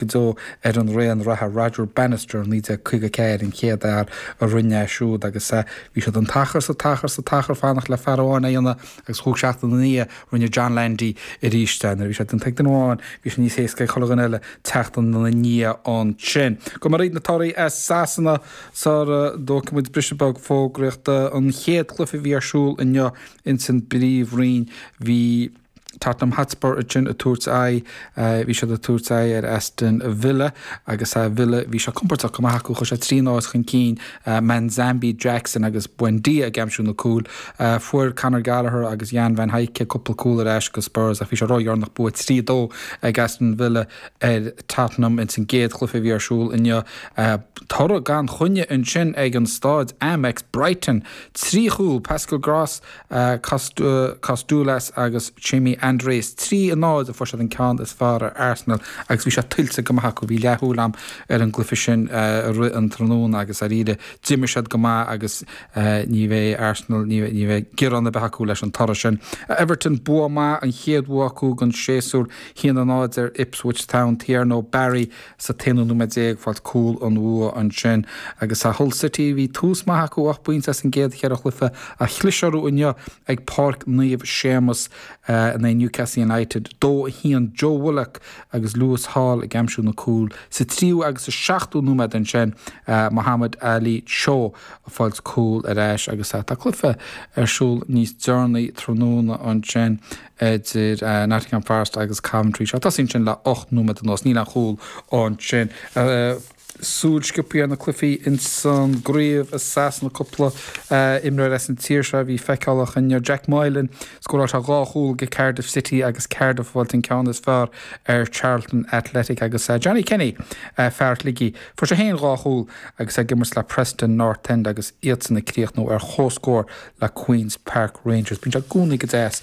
go deo ar an raon reatha, Roger Bannister, 1954, an chéad fhear a rinne é siúd agus bhí siad an t-achar, an t-achar, an t-achar ag fanacht le fear amháin é a dhéanamh agus cúig seachtaine ina dhiaidh rinne John Landy arís é. Nuair a bhí sé déanta ag duine amháin bhí sé níos éasca ag chuile dhuine eile teacht ina dhiaidh ansin. Go maith, na torthaí as Sasana sula dtógfaidh muid briseadh beag fógraíochta. An chéad chluiche a bhí ar siúl inniu ins an bPríomhroinn bhí. Tottenham Hotspur ansin ag tabhairt aghaidh, bhí siad ag tabhairt aghaidh ar Aston Villa agus Villa, bhí sé compordach go maith acu, chuaigh siad trí náid chun cinn, Manzambi, Jackson agus Buendia ag aimsiú na gcúil. Fuair Conor Gallagher agus Jan van Hecke cúpla cúl ar ais go Spurs ach bhí sé ródheireanach, bua trí a dó ag Aston Villa ar Tottenham ins an gcéad chluiche a bhí ar siúl inniu. Toradh gan choinne ansin ag an stáid Amex, Brighton trí chúl, Pascal Groß, Kostoulas agus Chema Andrés. Trí a náid a fuair siad an ceann is fearr ar Arsenal agus bhí sé tuillte go maith acu. Bhí leathshúil agam ar an gcluiche sin i rith an tráthnóna agus dháiríre d'imir siad go maith agus ní bheidh Arsenal, ní bheidh gearán ar bith acu leis an toradh sin. Everton bua maith, an chéad bhua acu den séasúr. A haon a náid ar Ipswich Town, Thierno Barry. Sa t-aonú nóiméad déag ag fáil cúl an bhua ansin agus Hull City. Bhí tús maith acu, ocht bpointe as an gcéad cheithre chluiche ach chlis orthu inniu ag Páirc Naomh Séamus in aghaidh Newcastle United. Dó a haon Joe Willock agus Lewis Hall ag aimsiú na gcúl. Sa tríú agus sa seachtú nóiméad ansin Mohammad Ali Cho ag fáil cúl ar ais agus tá cluiche ar siúl níos deireanaí tráthnóna ansin. idir Nottingham Forest agus Coventry. Sé tosaithe ansin le ocht nóiméad anuas, níl aon chúl ansin. Súil sciobtha ar na cluifí ins an gcraobh i Sasana cúpla imreoir as an tír seo a bhí feiceálach inniu. Jack Moylan, scóráil sé dhá chúl do Cardiff City agus Cardiff ag fáil an ceann is fearr ar Charlton Athletic agus Johnny Kenny, fear Shligigh, fuair sé féin dhá chúl agus é ag imirt le Preston North End agus iadsan ag críochnú ar comhscór le Queens Park Rangers. Bíonn sé i gcónaí go deas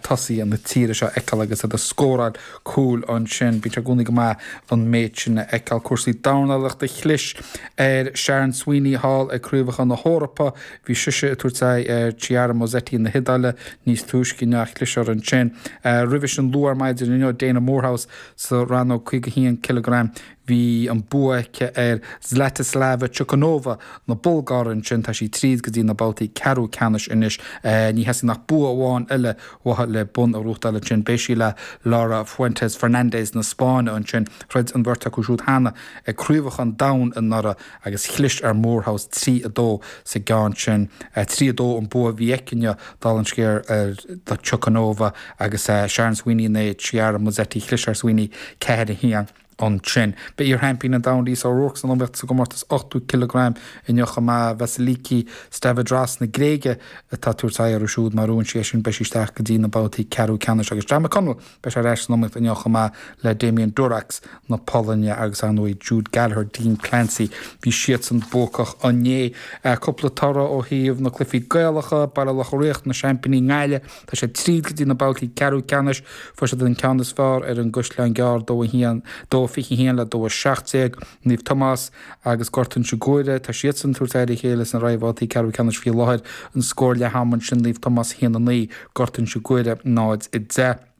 tosaithe na tíre seo a fheiceáil agus iad ag scóráil cúil ansin. Bíonn sé i gcónaí go maith an méid sin a fheiceáil. Cúrsaí dornálaíochta, Chlis ar Shannon Sweeney thall ag Craobhacha na hEorpa. Bhí sise ag tabhairt aghaidh ar Chiara Mozetti na hIodáile níos túisce inniu. Chlis uirthi ansin. Roimhe sin luath ar maidin inniu Daina Moorehouse sa rannóg 51 cileagram. Bhí an bua aici ar Zlatislava Chukanova na Bulgáire ansin. Tá sí tríd go dtí na babhtaí ceathrú ceannais anois. Ní theastaíonn ach bua amháin eile uaithi le bonn a ghnóthachtáil ansin. Beidh sí le Laura Fuertes Fernández na Spáinne ansin. Throid an bheirt acu siúd cheana ag Craobhacha an Domhain anuraidh agus chlis ar Moorehouse trí a dó sa gceann sin. Trí a dó an bua a bhí aici inniu, dála an scéil, ar Chukanova agus Shannon Sweeney in aghaidh Chiara Mozetti. Chlis ar Sweeney ceathair a haon. ansin. Beidh iarsheaimpín an domhain Lisa O'Rourke san iomaíocht sa gcomórtas 80 cileagram inniu chomh maith. Vasiliki Stavridras na Gréige atá ag tabhairt aghaidh uirthi siúd. Má bhuann sí é sin beidh sí isteach go dtí na babhtaí ceathrú ceannais agus Jon McConnell beidh sé ar ais san iomaíocht inniu chomh maith le Damian Durkacz na Polainne agus ar ndóigh Jude Gallagher, Dean Clancy. Bhí siadsan buacach inné. Cúpla toradh ó thaobh na cluichí Gaelacha, Baile Locha Riach na seaimpíní i nGaillimh. Tá siad tríd go dtí na babhtaí ceathrú ceannais. Fuair siad an ceann is fearr ar an gCaisleán Gearr, 2-1, 2-21 le 2-17. Naomh Tomás agus Gort Inse Guaire, tá siadsan ag tabhairt aghaidh ar a chéile sna réamhbhabhtaí ceathrú ceannais faoi láthair. An scór leath ama ansin Naomh Tomás 1-9, Gort Inse Guaire 0-10.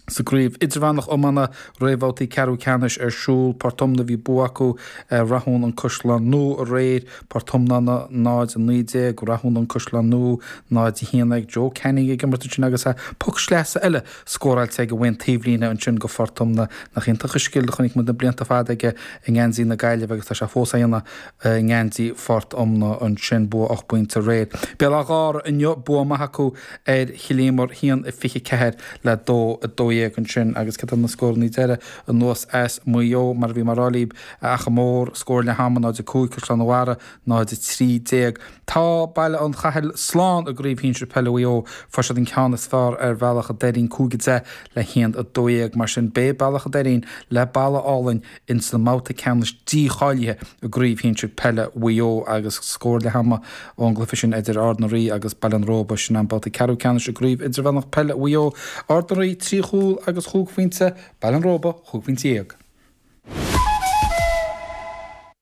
Sa gCraobh Idirmheánach Iomána, réamhbhabhtaí ceathrú ceannais ar siúl, Port Omna bhí bua acu ar Rathún an Caisleán Nua aréir, Port Omna 0-19, Rathún an Caisleán Nua 0-11. Joe Canning ag imirt ansin agus poc sleasa eile scóráilte aige uaidh an taobhlíne ansin do Phort Omna. Nach iontach an scil a chonaic muid na blianta fada aige i ngeansaí na Gaillimhe agus tá sé fós á dhéanamh i ngeansaí Phort Omna ansin. Bua ocht bpointe aréir. Béal Átha Ghártha inniu, bua maith acu. ar Chill Íomair haon a 24 le dó a 12 ansin agus céard iad na scórannaí deiridh anuas as Maigh Eo mar a bhí mé ag rá libh a Achadh Mór scór leath ama 0-5 Caisleán an Bharraigh 0-13 tá Baile an Chathail slán i gcraobh shinsir peile Mhaigh Eo fuair siad an ceann is fearr ar Bhealach an Doirín 5-10 le 1-12 mar sin beidh Bealach an Doirín le Balla Álainn ins an mbabhta ceannais dícháilithe i gCraobh Shinsir Peile Mhaigh Eo agus scór leath ama ón gcluiche sin idir Ard na Rí agus Baile an Róba, sin an babhta ceathrú ceannais i gCraobh Idirmheánach Peile Mhaigh Eo. Ard na Rí trí chúl agus chúig phointe, Baile an Róba chúig phointe dhéag.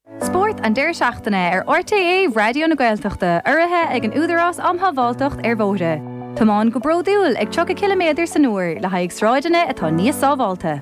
Spórt an deireadh seachtaine ar RTÉ Raidió na Gaeltachta urraithe ag an Údarás um Shábháilteacht ar Bhóithre. Tiomáin go bródúil ag 30 ciliméadar san uair le haghaidh sráideanna atá níos sábháilte.